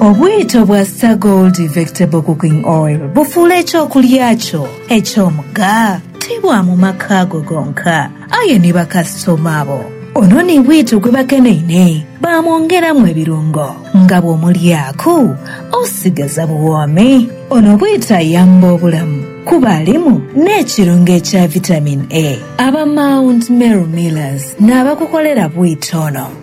Obwito bwa Star Gold Vectable Cooking Oil bufuula eky'okulya kyo eky'omugha ti bwa mu maka go gonka, aye ni bakasitoma bo. Ono ni bwito gwe bakeneine baamwongeramu ebirungo nga bw'omulyaku osigaza buwoomi. Ono bwito ayamba obulamu kuba alimu n'ekirungo ekya Vitamin A. Aba Mount Meru Millers n'abakukolera bwito ono.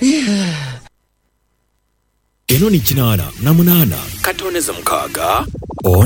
Yee. Eno ni kinaana na munaana. Katooneze mukaaga.